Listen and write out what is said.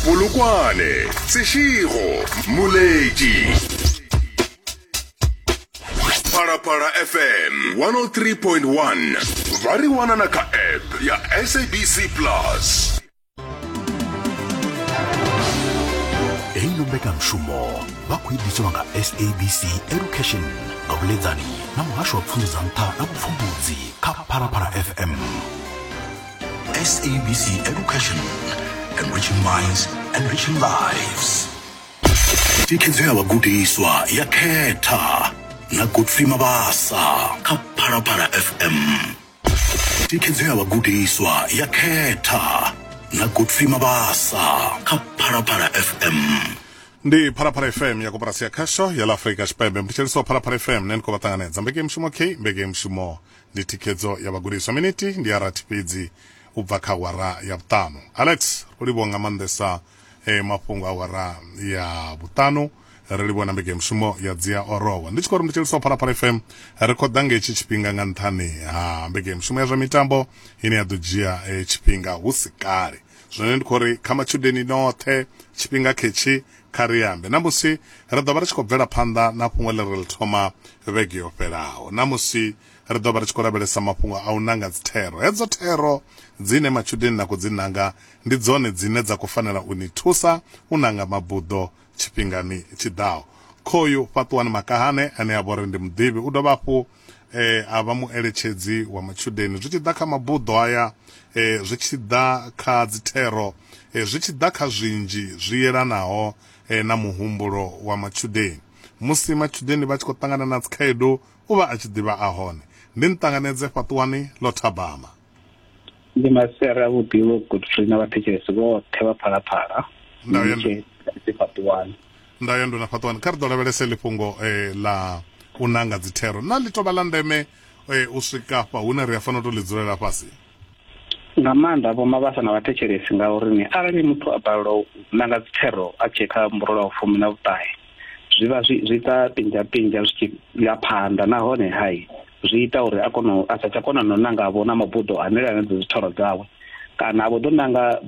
polokwane seširo moledi phalaphala fm 103.1 ba re wanana ka app ya sabc plus heino mbekanmushumo vha khou iḓiswa nga sabc education nga vhuledzani na muhasho wa pfunzo dza nṱha na vhupfumbudzi kha phalaphala fm SABC Education, enriching minds, enriching lives. thikhedzo ya vhagudiswa ya khetha na godfrey mabasa kha phalaphala fm thikhedzo ya vhagudiswa ya khetha na godfrey mabasa kha phalaphala fm ndi phalaphala fm ya koporasi ya khasho ya la afurika tshipembe mbetshelisi wa phalaphala fm ne ni khou vha ṱanganedza mbekemushumo k mbekemushumo ndi thikhedzo ya vhagudiswa. Minithi ndi ya rathi fhedzi u bva kha awara ya vhuṱanu. Alex, ro livhuwa nga maanḓesa eh, mafhungo a awara ya vhuṱanu ri livhuwa na mbege ya mushumo ya dzia orowa ndi tshi khou ri ndi tshi lisa phalaphala fm ri khou ḓa nga hetshi tshifhinga nga nṱhani ha mbege ya mushumo ya zwa mitambo ine ya ḓo dzhia eh, tshifhinga hu si kale zwine ndi khou ri kha matshudeni noṱhe tshifhinga khetshi kha ri ambe ṋamusi ri ḓo vha ri tshi khou bvela phanḓa na fhungo ḽi ri ḽi thoma vhege yo fhelaho ṋamusi ri ḓo vha ri tshi khou lavhelesa mafhungo a u nanga dzithero hedzo thero dzine matshudeni na khou dzi nanga ndi dzone dzine dza khou fanela u ni thusa u nanga mabuḓo tshifhingani tshi ḓaho khoyu fhaṱuwani makahane ane a vha uri ndi muḓivhi u dovha hafhu eh, a vha mueletshedzi wa matshudeni zwi tshi ḓa kha mabuḓo aya eh, zwi tshi ḓa kha dzithero eh, zwi tshi ḓa kha zwinzhi zwi yelanaho eh, na muhumbulo wa matshudeni musi matshudeni vha tshi khou ṱangana na dzikhaedu u vha a tshi ḓivha a hone ndi nṱanganedze fhaṱuwani ḽo thabama ndi masere a vhuḓi vho godfrey na vhathetshelesi vhoṱhe vha phalaphala fhaṱiwani nda ya ndo na fhaṱiwani kha ri ḓo lavhelese ḽi fhungo eh, ḽa u nanga dzithero na ḽi tovha ḽa ndeme eh, u swika fha hune ri a fanela u tou ḽi dzulela fhasi nga maanḓa vho mavhasa na vhathetshelesi ngauri ni arali muthu a balelwa u nanga dzithero a tshee kha mburola wa fumi na vhuṱahe zwi vha zwi ita pinzha pinzha zwi tshi ya phanḓa nahone hai zwi ita uri a kone a sa tsha kona no nanga vho na mabuḓo hanela na dzi dzithoro dzawe kana a vho ḓo nanga